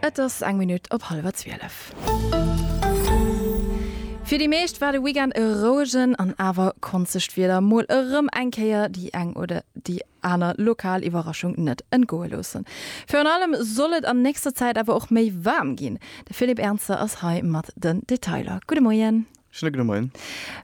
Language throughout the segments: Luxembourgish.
Et ass eng Minutt op hallwer zwielef. Fir déi meescht war de Weekend e rouegen an awer konzegt Wieder. Mol erëm eng Kéier déi eng oder déi aner lokal Iwwerraschung net entgoe loossen. Virun allem soll et an nächster Zäit awer och méi waarm ginn. De Philippe Ernzer ass hei mat den Detailer. Gudde Moien. Schéine gudde Moien.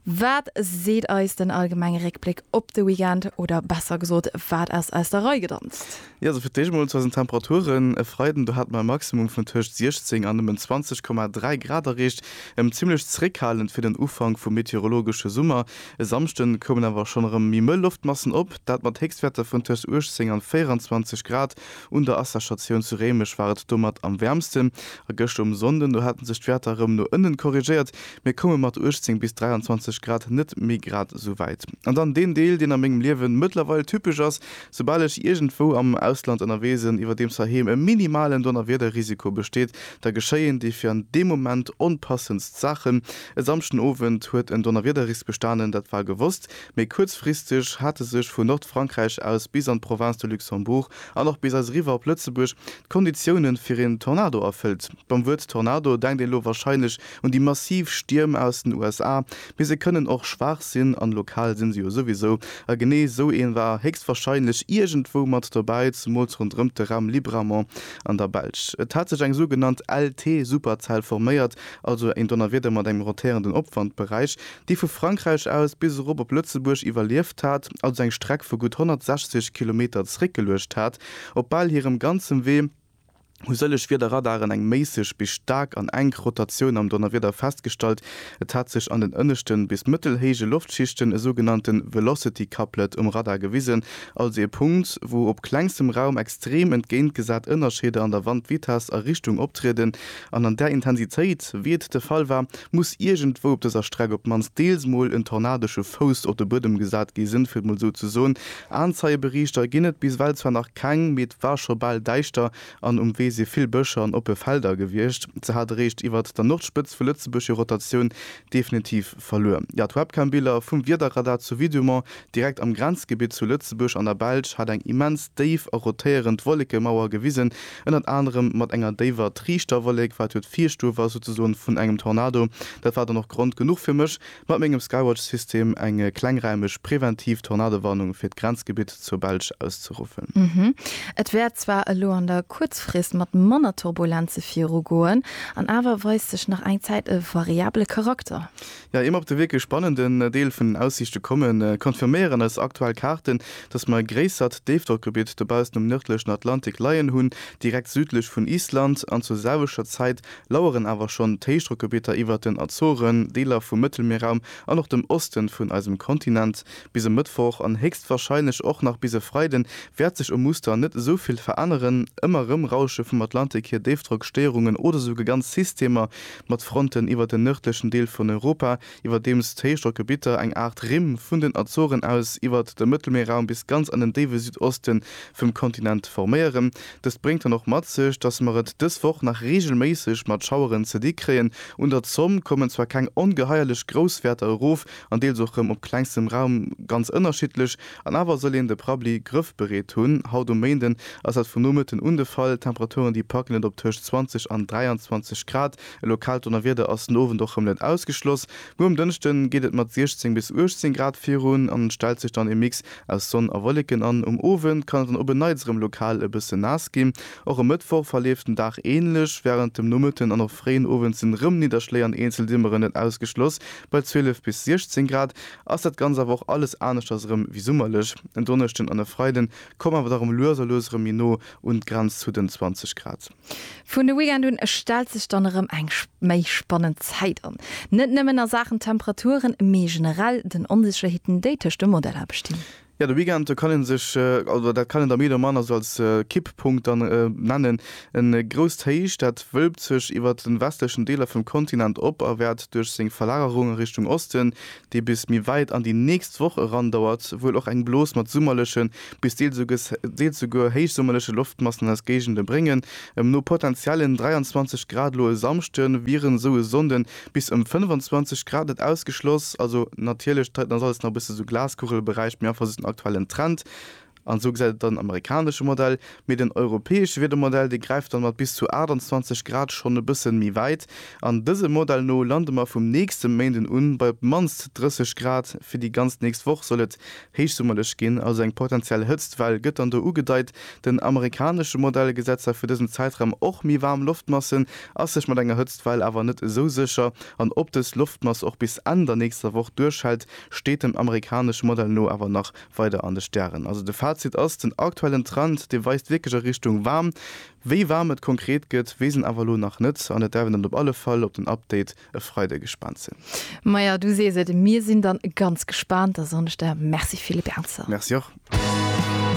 Wat seet eis den allgemenge Réckbléck op de Weekend? Oder besser gesot, wat ass aus der Rei gedanzt? Jo, also fir d'éischt emol zu eisen Temperaturen, E Freiden, do hate mer e Maximum vun tëscht 16 an nëmmen 20,3 Grad erreecht, zimmlech zeréckhalend fir den Ufank vum meteorologesche Summer. E Samschden koumen awer schonn erëm méi mëll Loftmassen op, dat mat Héchstwäerter vun tëscht 18 an 24 Grad. Un der Asserstatioun zu Réimech war et domat am wäermsten. A gëschter um Sonnden, do hate sech d'Wäerter erëm no ënnen korrigéiert. Mir koume mat 18 bis 23 Grad net méi grad esou wäit. An dann deen Deel, deen a mengem Liewen mëttlerweil typesch ass, Soubal ech iergendwou am Ausland ënnerwee sinn, iwwerdeems heiheem e minimalen Donnerwiederrisiko besteet, da geschéien déi fir an deem Moment onpassendst Saachen. E Samschden Owend huet en Donnerwiederrisk bestanen, dat war gewosst. Méi kuerzfristeg hate sech vun Nordfrankräich aus bis an d'Province de Luxembourg an och bis eis eriwwer op Lëtzebuerg d'Konditiounen fir een Tornado erfëllt. Beim Wuert Tornado denkt een elo wahrscheinlech un déi massiv Stierm aus den USA, mee se kënnen och schwaach sinn an lokal sinn se jo souwisou. A genee esou een war héchstwahrscheinlech iergendwou mat dobäi, zemools ronderëmt de Raum Libramont an der Belsch. Et hat sech eng sougenannt LT-Superzell forméiert, also een Donnerwieder mat engem rotierenden Opwandberäich. déi vu Frankräich aus bis erop op Lëtzebuerg iwwerlieft hat, also eng Streck vu gutt 160 Kilometer zréckgeluecht hat. Op bal hirem ganzem Wee hu sëllech Wiederradaren eng méisseg bis staark an enk Rotatioun am Donnerwieder festgestallt. Et hat sech an den ënneschten bis mëttelhéije Loftschichten e sougenannte Velocity Couplet um Radar gewisen, also e Punkt, wou op klengstem Raum extrem entgéintgesat Ënnerscheeder an der Wandvitess a richtung optrieden. An an där Intensitéit, wéi et de Fall war, muss iergendwou op dëser Streck op d'mannst deels mol en tornadesche Fouss op de Buedem gesat gi sen, fir et mol esou ze soen. Aenzeie-Berichter ginn et bis ewell zwar nach keng, mee et war scho bal däischter an um Wee si vill Bëscher an oppe Felder gewiescht. Se hat eréischt iwwert der Nordspëtz vu Lëtzebuerg hir Rotatioun definitiv verluer. Jo, d'Webcam-Biller vum Wiederradar zu Vidumont Direkt am Grenzgebitt zu Lëtzebuerg an der Belsch hat eng immens déif a rotéierend Wollekemauer gewisen, ënnert anerem mat enger déiwer Triichterwollek, wat jo d'Virstuerf ass souzesoen vun engem Tornado. Dat war dann och Grond genuch fir mech, mat mengem Skywatch-System eng klengräimeg präventiv Tornadowarnung fir d'Grenzgebitt zur Belsch auszeruffen. Et wäert zwar elo an der Kuerzfrist mat manner Turbulenze virugoen, an awer weist sech nach eng Zäit e variable Charakter. Ier mer op de wierklech spannenden Deel vun den Aussiichte kommen, confirméieren eis aktuell Kaarten, dass mer e gréissert Déifdrockgebitt dobaussen um nërdlechen Atlantik leien hunn, direkt südlech vun Island, an zur selwechter Zäit laueren awer schonn d'Héichdrockgebitter iwwert den Azoren, Deeler vum Mëttelmierraum an och dem Osten vun eisem Kontinent. Bis e Mëttwoch an héchstwahrscheinlech och nach bis e Freiden wäert sech um Muster net esou vill veränneren. Ëmmer rëm rausche vum Atlantik hier Déifdrockstéierungen oder souguer ganz Systemer mat Fronten iwwer den nërdlechen Deel vun Europa, iwwerdeems d'Héichdrockgebitter eng Aart Rimm vun den Azoren aus iwwert de Mëttelmierraum bis ganz an den déiwe Südoste vum Kontinent forméieren. Dëst bréngt dann och mat sech, dass mer et dës Woch nach reegelméisseg mat Schaueren ze di kréien. Un der Zomm kommen zwar keng ongeheierlech grouss Wäerter erof an deels och rëm op klengstem Raum ganz ënnerschiddlech, An awer soll een de Prabbli grëffbereet hunn. Haut um Méinden ass dat vum Nomëtten un de Fall. D'Temperaturen, déi packen et op tëscht 20 an 23 Grad. E lokaalt Donnerwieder ass den Owend och rëm net ausgeschloss. Muer um Dënschde geet et mat 16 bis 18 Grad virun an et stellt sech dann e Mix aus Sonn a Wolleken an. Um Owend kann et dann op en Neits rëm lokal e bësse naass ginn. Och e Mëttwoch verleeft den Dag änlech. Wärend dem Nomëtten an och fréien Owend sinn rëm Nidderschléi an eenzel Dimmeren net ausgeschloss bei 12 bis 16 Grad. ass dat ganz awer och alles aneschters erëm wéi summerlech. En Donneschden an e Freiden komme mer awer dach erëm lues a lues erëm méi no un d'Grenz zu den 20 Grad. Vun de Weekend un stellt sech dann erëm eng méi spannend Zäit an. Net nëmmen a Saachen Temperaturen, mee generell den Onsécherheeten, déi tëscht de Modeller bestinn. Jo, de Weekend, do kann een sech, oder dat kann een da méi oder manner sou als Kipppunkt dann nennen, e grousst Héich, dat wölbt sech iwwert de westlechen Deeler vum Kontinent op a wäert duerch seng Verlagerung a Richtung Osten, déi bis méi wäit an déi nächst Woch erandauert, wuel och eng Blos mat summerleche bis deels souguer héichsummerleche Loftmassen an eis Géigende bréngen. Em no potenziellen 23 Grad elo e Samschde wieren esou e Sonnde Bis ëm 25 Grad net ausgeschloss. Also natierlech d'Zeit ass alles nach e bësse sou Glaskugelberäich, mee einfach sou den aktuellen Trend. An esou gesäit et dann amerikanesche Modell, mee den europäesche Wiedermodell dee gräift dann mat bis zu 28 Grad schonn e bësse méi wäit. An dësem Modell no lande mer vum nächste Méinden un bei op d'mannst 30 Grad. Fir déi ganz nächst Woch soll et Héichsummerlech ginn, also eng potentiell Hëtztwell gëtt dann do ugedeit. Den amerikanesche Modell gesäit zwar fir dësen Zäitraum och méi waarm Loftmassen, ass sech mat enger Hëtztwell awer net esou sécher. An ob dës Loftmass och bis Enn der nächster Woch duerchhält, steet dem amerikanesche Modell no awer nach weider an de Stären. Also de Fazit ass, den aktuellen Trend, dee weist wierklech a Richtung waarm. Wéi waarm et konkret gëtt, weess een awer elo nach net an et däerf een dann op alle Fall op den Update E Freideg gespaant sinn. Maja, du sees et, mir sinn dann ganz gespaant, da soen ech der Merci villebernzer. Merci och.